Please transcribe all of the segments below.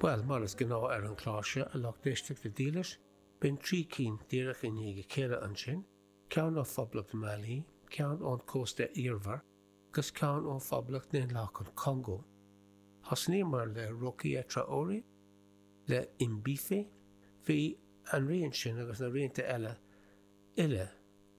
Bhuel, mar is gnáth ar an chlár seo, a lucht éisteachta dílis, bíonn trí cinn díreach i ndiaidh a chéile ansin, ceann ó Phoblacht Mhailí, ceann ón Chósta Eabhair, agus ceann ó Phoblacht Dhaonlathach an Congó. Thosnaíomar le Rokia Traoré, le M'Bifo, bhí an rian sin agus na rianta eile uile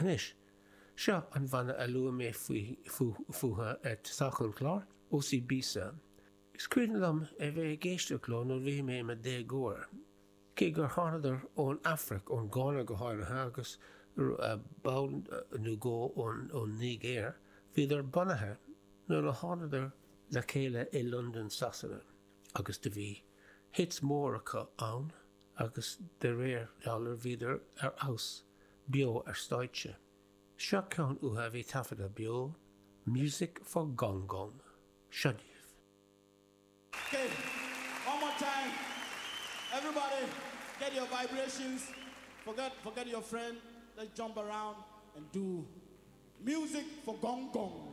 Anois, seo an bhanna a luaigh mé fúthu ag tosach an chláir, Osibisa. Is cuimhin liom é bheith ag éisteacht leo nuair a bhí mé i mo dhéagóir, cé gur thánadar ón Afraic, ón Gána go háirithe, agus ball nó dhó ón Nigéir, bhíodar bunaithe nuair a thánadar le chéile i Londain, Sasana. Agus do bhí hits mór acu ann agus de réir dealraimh bhíodar ar fheabhas beo ar stáitse. Seo ceann uathu a bhí taifeadta beo, Music for Gong Gong. Seo daoibh. Okay, one more time, everybody get your vibrations, forget forget your friend, let's jump around and do Music for Gong Gong.